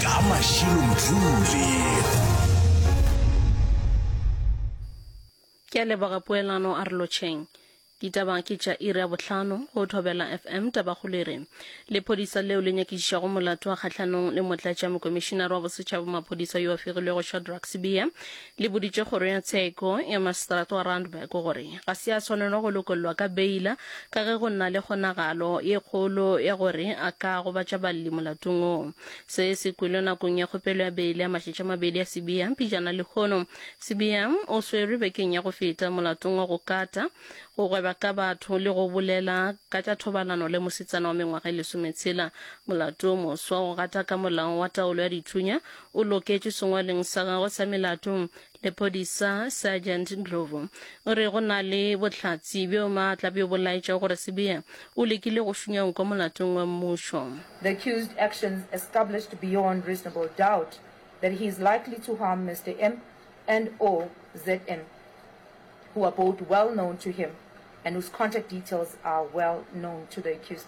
ka mašilo mthuli ke a leboga poelano a re lotšheng ditaba ke tša iri ya bohlano go thobela fm tabakgolo e re lephodisa leo le nyakišišago molato wa kgatlhanong le motlatša mokomišinare wa bosetšhaba maphodisa yo a fegilwego shadrack sibiya Le boditše Kgoro ya Tsheko ya Maseterata wa Randburg gore ga se a swanelwa go lokollwa ka beila ka ge go na le kgonagalo ye kgolo ya gore a ka gobatša balli molatong wo. Se se kwelwe nakong ya kgopelo ya beile ya matšatši a mabedi ya Sibiya pejana lehono. Sibiya o swerwe bekeng ya go feta molatong wa go kata, go gweba ka batho le go bolela ka tša thobalano le mosetsana wa mengwaga e lesometshela. Molato wo moswa o gata ka molao wa taolo ya dithunya o loketšwe sengwalweng sa gagwe sa melato. Lephodisa Sergeant Ndlovu o re go na le bohlatse bjo maatla bjo bo laetša gore Sibiya o lekile go šunya nko molatong wa mmušo. The accused actions established beyond reasonable doubt that he is likely to harm Mister M and or ZM who are both well known to him and whose contact details are well known to the accused.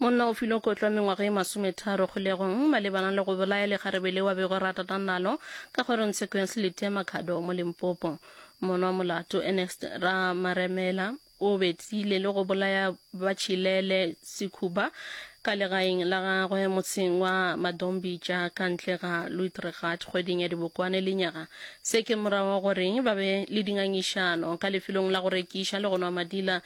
monna o filwe kotlo mengwaga e masometharo kgolegong malebana le go bolaya legarebe le wa bego ratata nalo ka kgorong tshekong selete ya makhado mo lempopo monwa molato ernest ramaremela o betsile le go bolaya batšhilele sekhuba ka legaeng la gagwe motseng wa madombitša ka ntle ga luitregat kgweding ya dibokwane le nyaga se ke morago gore ba be le dingangišano ka lefelong la go rekiša le go nwa madila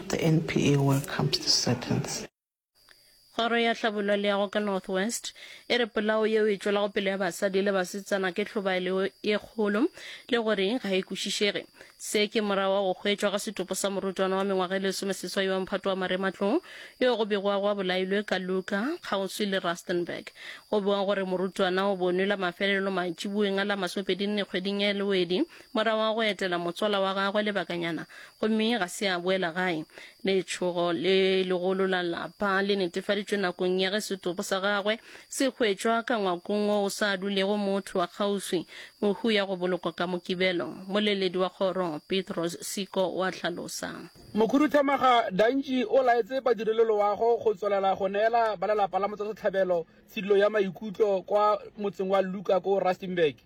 The NPA welcomes this sentence. Kgoro ya Hlabollwa le ya go ka North West e re polao yeo e tšwelago pele ya basadi le basetsana ke hlobaelo ye kgolo le gore ga e kwešišege. Se ke morago ga go hwetšwa ga setopo sa morutwana wa mengwaga e lesomeseswai wa mphato wa marematlou yo go begwago a bolailwe ka Luka kgauswi le Rustenburg. Go bewa gore morutwana o bonwe la mafelelo mantšiboeng a la masomepedi nne kgweding ya Lwedi Morago ga go etela motswala wa gagwe lebakanyana gomme ga se a boela gae, letšhogo le legolo la lapa le netefaditšwe nakong ya ge setopo sa gagwe se hwetšwa ka ngwakong wo o sa dulego motho wa kgauswi. Mohu ya go bolokwa ka Mokibelo, Moleledi wa kgoro Petros Siko o a hlalosa. Mokhuduthamaga Dantšhi o laetse badireloloago go tswelela go neela ba lelapa la motswasetlhabelo tshidilo ya maikutlo kwa motseng wa Luka ko Rustenburg.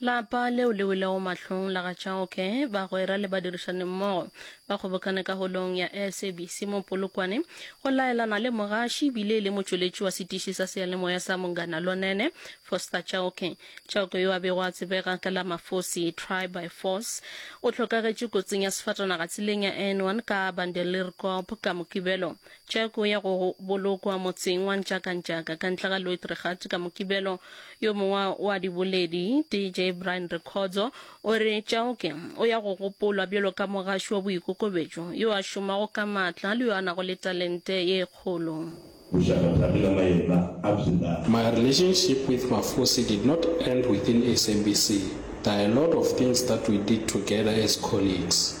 Lapa leo le welego mahlong la ga Chauke, bagwera le badirišanimmogo ba kgobokane ka holong ya SABC mo Polokwane go laelana le mogaši ebile e le motšweletši wa setiši sa seyalemoya sa Mongana Lonene, Foster Chauke. Chauke yo a bego a tsebega ka la Mafosi, Try by Force, o hlokagetše kotsing ya sefatanaga tseleng ya N1 ka Bandelierkop ka Mokibelo Jack o ya go bolokwa motseng wa Ntšakantšaka ka ntle ga Loitregat ka Mokibelo. Yo mongwe wa diboledi, DJ Brian Rekhodzo, o re Chauke o ya go gopolwa bjalo ka mogaši wa boikokobetšo yo a šomago ka maatla le yo a nago le talente ye kgolo. My relationship with Mafosi did not end within SABC, there are a lot of things that we did together as colleagues.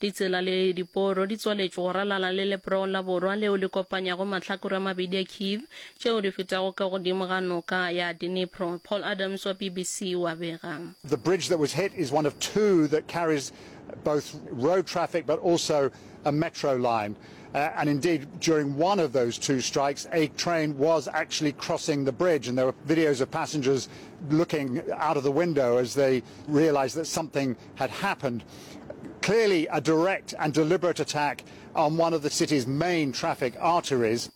Ditsela le diporo di tswaletšwe go ralala le leproong la borwa leo le kopanyago mahlakore a mabedi a Kyiv, tšeo di fetago ka godimo ga noka ya Dnipro. Paul Adams wa BBC o a bega. The bridge that was hit is one of two that carries both road traffic but also a metro line. Uh, and indeed, during one of those two strikes, a train was actually crossing the bridge, and there were videos of passengers looking out of the window as they realized that something had happened. Clearly a direct and deliberate attack on one of the city's main traffic arteries.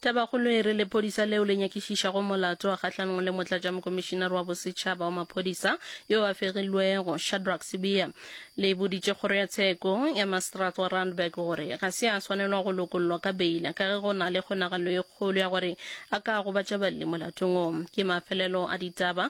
Tabakgolo e re lephodisa leo le nyakišišago molato wa kgahlanong le motlatšamokomišinare wa bosetšhaba wa maphodisa yo a fegilwego, Shadrack Sibiya, le boditše kgoro ya tsheko ya Maseterata wa Randburg gore ga se a swanelwa go lokollwa ka beile ka ge go na le kgonagalo e kgolo ya gore a ka gobatša balli molatong o. Ke mafelelo a ditaba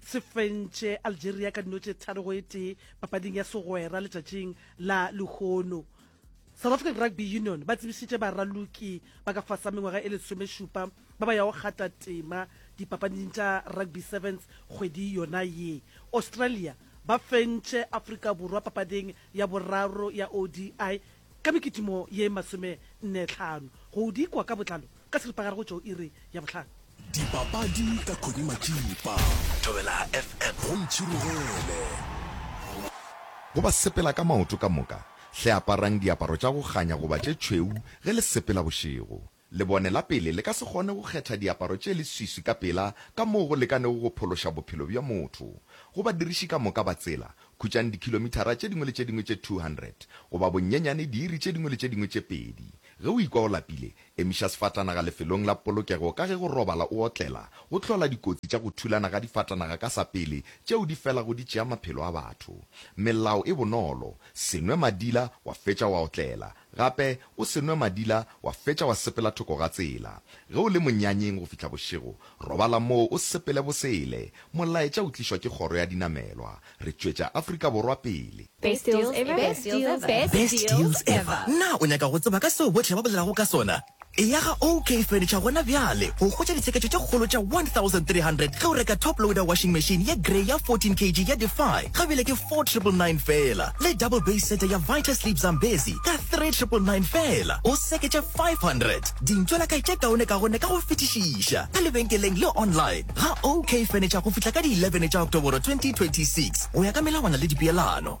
se fentše algeria ka dino tše tharo go e tee papading ya segwera letšatšing la lehono south african rugby union ba tsebišitše baraloki ba ka fasa mengwaga e lesomešupa ba ba yago kgata tema dipapading tša rugby sevens kgwedi yona ye australia ba fentše afrika borwa papading ya boraro ya odi Ka mekitimo ye masomenne-tlhano go di kwa ka botlalo ka seripagare go tšo iri ya bohlano. Dipapadi ka Connie Matšipa. Thobela FM go ntšhirogele. Go ba sepela ka maoto ka moka, hle aparang diaparo tša go kganya goba tše tšhweu ge le sepela bošego. Lebone la pele le ka se kgone go kgetha diaparo tše leswiswi ka pela ka moo go lekanego go phološa bophelo bja motho. Go badiriši ka moka ba tsela, khutšang dikhilomithara tše dingwe le tše dingwe tše 200, goba bonyenyane diiri tše dingwe le tše dingwe tše pedi. Ge o ikwa o lapile, emiša sefatanaga lefelong la polokego ka ge go robala o otlela go hlola dikotsi tša go thulana ga difatanaga ka sa pele tšeo di felago di tšea maphelo a batho. Melao e bonolo, Se nwe madila wa fetša wa otlela. Gape o se nwe madila wa fetša wa sepela thoko ga tsela. Ge o le monyanyeng go fihla bošego, robala moo o sepele bosele. Molaetša o tlišwa ke kgoro ya dinamelwa. Re tšwetša Afrika Borwa pele. Best deals ever. Best deals ever. Best deals ever. Naa o nyaka go tseba ka seo bohle ba bolelago ka sona? Eya ga OK Furniture gona bjale go hwetša ditsheketšo tše kgolo tša 1300 ge o reka top loader washing machine ye grey ya 14 kg ya Defy ga bile ke 4999 feela le double base sete ya Vita Sleep Zambezi ka 3999 feela o seketše 500. Dintšo la kae tše kaone ka gonne ka go fetišiša ka lebenkeleng le online ga OK Furniture go fihla ka di 11 tša Oktoboro 2026 go ya ka melawana le dipeelano.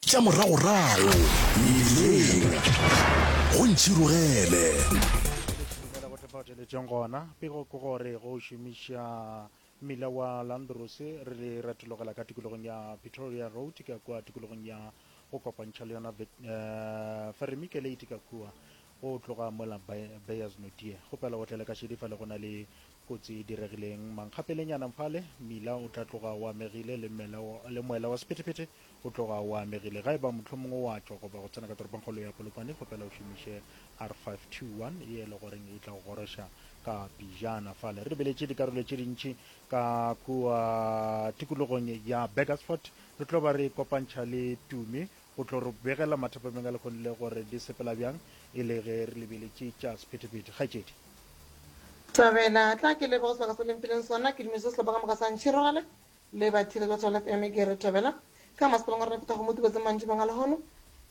tša moragorago mebileng go ntšhirogele Dumela go tefa theletšong gona pego ke gore go šomiša mmila wa landros re le retologela ka tikologong ya pretoria road ka kua tikologong ya go kopantšha le yona Vet- eh, feremike late ka kua Go tloga mola Be-, Beyers Notie, kgopela o tlele ka šedi fale go na le kotsi e diregileng mankgapelenyana fale, mmila o tla tloga o amegile le mmela wa, le moela wa sephetephete o tloga o amegile. Ga e ba mohlomongwe o a tšwa goba go tsena ka toropongkgolo ya Polokwane, kgopela o šomiše R521 ye e le goreng e tla go goroša ka pijana fale. Re lebeletše dikarolo tše dintši ka kua tikologong ya Burgersfort, re tlo ba re kopantšha le Tumi O tlo re begela mathapameng a lekgoni le gore di sepela bjang e le ge re lebeletše tša sephethephethe. Kgaetšedi. Thabela, Tla ke lebe go sebaka se le mphileng sona, ke dumešiše sehlopha ka moka sa Ntšhirogale le bathiledi ba Thobela FM. Ke re, Thabela, ka masepaleng wa rena phethwa kgomo tubetseng mantšibong a lehono.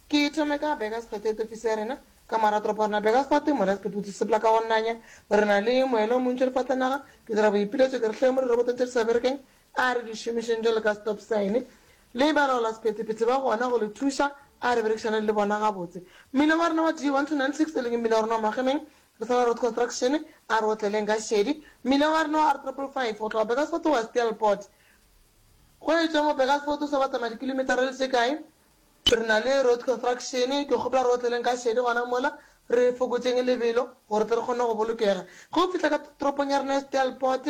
Ke thome ka Burgers Potato, ofisi ya rena ka morago toropo ya rena Burgers Fort, More's Pit Boots, sepela ka go nanya. Re na le moelo o montši o lefatlenaga. Ke dira boipiletšo ke re hleng mo dirobotong tše di sa berekeng A re di šomišeng jalo ka stop sign le balaolasephetephete ba gona go le thuša. A re berekišaneng le bona gabotse. Mmino wa rena wa D 1296 e leng mmino wa rena wa Magemeng, re sa na Road Construction, a re o tleleng ka šedi. Mmino wa rena wa R 555 go tloga Burgersfort go ya Steelpoort. Go e tšwa mo Burgersfort o sa ba tsamaya dikilometara le tše kae, re na le Road Construction. Ke kgopela gore o tleleng ka šedi gona mola, re fokotšeng lebelo gore tle re kgone go bolokega. Ge o fihla ka toropong ya rena ya Steelpoort,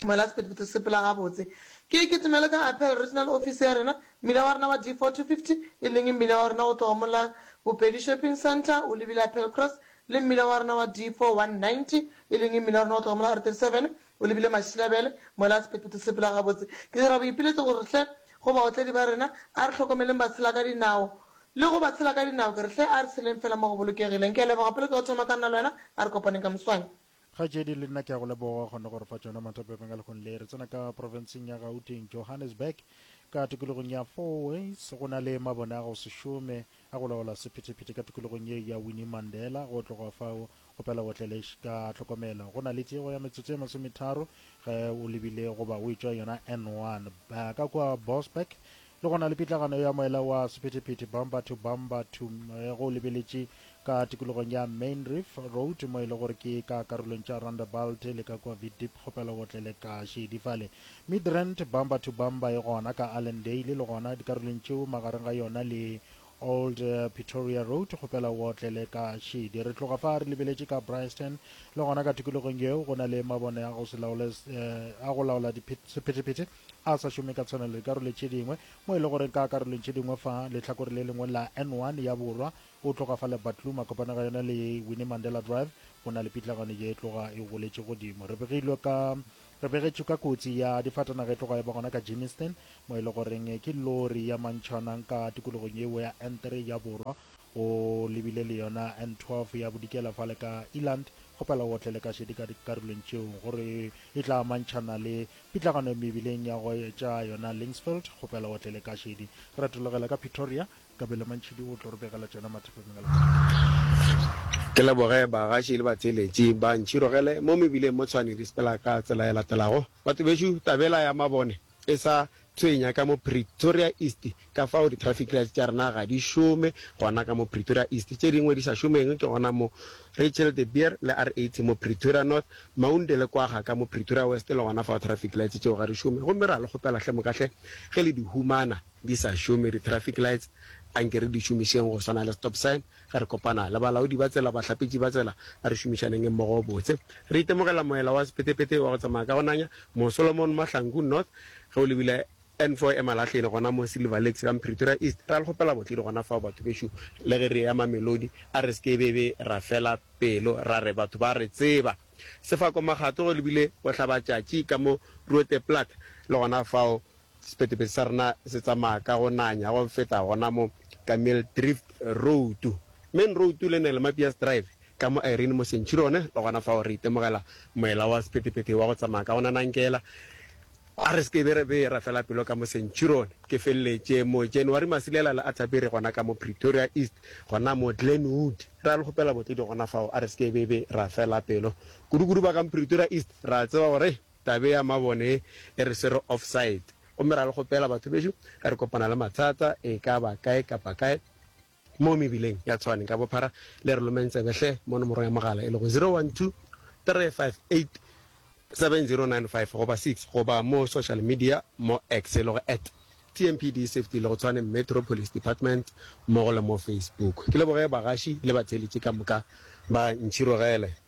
Tumela Sephetephete se phela gabotse. Ke, ke tumelo ka Apel, regional office ya rena, mmila wa rena wa D4-250, e leng mmila wa rena go tloga mo la Bopedi Shopping Centre o lebile Apel Cross, le mmila wa rena wa D4-190, e leng mmila wa rena go tloga mo la R37 o lebile Mašilabele. Mola Sephetephete se phela gabotse. Ke dira boipiletšo go re hle, go baotledi ba rena, a re hlokomeleng batshela ka dinao. Le go batshela ka dinao, ke re hle, a re tsheleng feela mo go bolokegileng. Ke a leboga pele ke go thoma ka nna le wena, a re kopaneng ka moswane. Kgaetšedi le nna ke a go leboga gona gore fa tšona matapepeng a lekgong le re tsena ka profenseng ya Gauteng, Johannesburg, ka tokologong ya Fourways. Go na le mabone a go se šome a go laola sephetephete ka tokologong ye ya Winnie Mandela. Go tloga fao go pela Botleleš ka tlhokomelo. Go na le tiego ya metsotso ye masometharo ge o lebile goba o etšwa yona N1. Ba ka kua Bosberg Le gona le pitlagano ya moela wa sephethephethe bumper to bumper to ge o lebeletše ka tikologong ya Mainreef Road mo e le gore ke ka karolong tša Rondebult le ka kua Vidip kgopela o otlele ka šedi fale. Midrand bumper to bumper e gona ka Allendale le gona dikarolong tšeo magareng ga yona le Old Pretoria Road kgopela o otlele ka šedi. Re tloga fa re lebeletše ka Bryanston le gona ka tikologong yeo go na le mabone a go se laole a go laola sephethephethe. a sa šome ka tshwanelo dikarolo tše dingwe, mo e le gore ka karolong tše dingwe fa lehlakore le lengwe la N one ya borwa, o tloga fa le Batlum a kopana ga yona le Winnie Mandela Drive, go na le pitlagano ye e tloga e goletše godimo. Re begilwe ka, re begetšwe ka kotsi ya difatanaga e tloga e ba gona ka Germiston, mo e le goreng ke lori ya mantšhana nka tikologong yeo ya N three ya borwa, O lebile le yona N12 ya bodikela fa le ka Eland, kgopela o otlele ka šedi ka dikarolong tšeo gore e tla amantšhana le pitlagano ya mebileng ya go etša yona Linksfield, kgopela o otlele ka šedi. Retologela ka Pitoria, Kabelo Mantšhidi o tlo re begela tšona mathapeng a letsatsi. Ke leboge bagaši le batheeletši ba Ntšhirogele mo mebileng mo Tshwane le Spela ka tsela e latelago. Batho bešo, tabela ya mabone. e sa tshwenya ka mo Pretoria East ka fao di traffic lights tša rena ga di šome gona ka mo Pretoria East, tše dingwe di sa šomeng ke gona mo Rachel de Beer le R80 mo Pretoria North, Maunde le Kwagga ka mo Pretoria West le gona fao traffic lights tšeo ga di šome gomme re a le kgopela hle moka hle ge le di humana di sa šome di traffic lights anke re di šomišeng go swana le stop sign. Ge re kopana le balaodi ba tsela, bahlapetši ba tsela, a re šomišaneng mmogo gobotse. Re itemogela moela wa sephethephethe wa go tsamaya ka go nanya mo Solomon Mahlangu North ge o lebile N4 e Malahleni gona mo Silver Lakes ka Mpretoria East. Re a le kgopela botledi gona fao batho bešo le ge re eya Mamelodi. A re se ke be be ra fela pelo ra re batho ba re tseba. Sefako Makgato ge o lebile Bohlabatšatši ka mo Roodeplaat le gona fao Sephetepete sa rena se tsamaya ka go nanya go feta gona mo Camille Drift Road, Main Road le Nel Mapias Drive, ka mo Irene mo Centurion, le gona fao re itemogela moela wa sephetepete wa go tsamaya ka go nanankela. A re se ke be ra be ra fela pelo ka mo Centurion. Ke feleletše mo January masilela le Atterbury gona ka mo Pretoria East, gona mo Glenwood. Ra le kgopela botlodi gona fao. A re se ke be be ra fela pelo kudukudu ba ka mo Pretoria East, ra tseba gore. Tabe ya mabone e re swere offside gomme ra le kgopela batho bešo ge re kopana le mathata e ka ba kae kapa kae mo mebileng ya Tshwane ka bophara le re lomeng tsebe hle mo nomorong ya mogala e lego 012-358-7095 goba 6 goba mo social media mo X e lego at TMPD Safety le go Tshwane Metro Police Department mmogo le mo Facebook. Ke leboge bagaši le batheeletši ka moka ba ntšhirogele.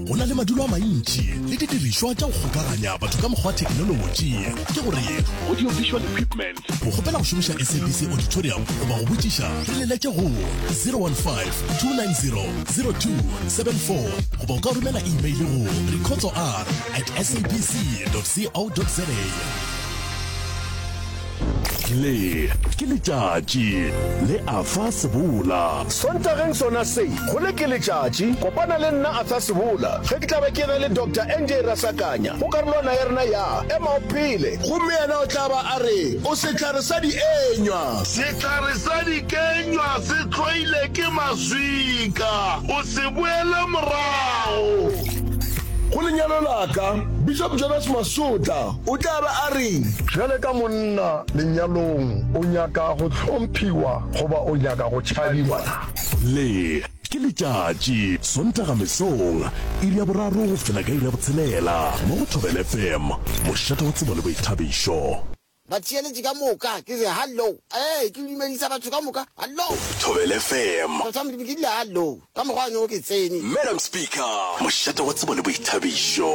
Go na le madulo a mantši le didirišwa tša go kgokaganya batho ka mokgwa wa thekinolotši. Ke gore Audio Visual Equipment. Go kgopela go šomiša SABC Auditorium goba go botšiša, re leletše go 015-290-0274 goba o ka romela imeile go rikhotsoar at sabc.co.za. Le ke letšatši, le a fa sebola. Sontageng sona se, go le ke letšatši, kopana le nna Arthur Sebola ge ke tla be ke na le Doctor NJ Rasakanya go karolwana ya rena ya Ema o Phele. Gomme yena o tla ba a re, O sehlare sa dienywa. Sehlare sa dikenywa se hloile ke maswika, o se boele morago. Go lenyalo la ka, Bishop Jonas Masotla. O tla ba a reng? Bjale ka monna lenyalong, o nyaka go hlomphiwa goba o nyaka go tšhabiwa na? Le, ke letšatši, Sontaga mesong, iri ya boraro go fihla ka iri ya botshelela, mo go Thobela FM, mošate wa tsebo le boithabišo. Batheeletši ka moka, ke re, Hallo. Ee, ke dumedisa batho ka moka. Hallo. Thobela FM. Batho ba Modimo, ke rile, Hallo. Ka mokgwa wa nogo ke tsene. Madam Speaker, mošate wa tsebo le boithabišo.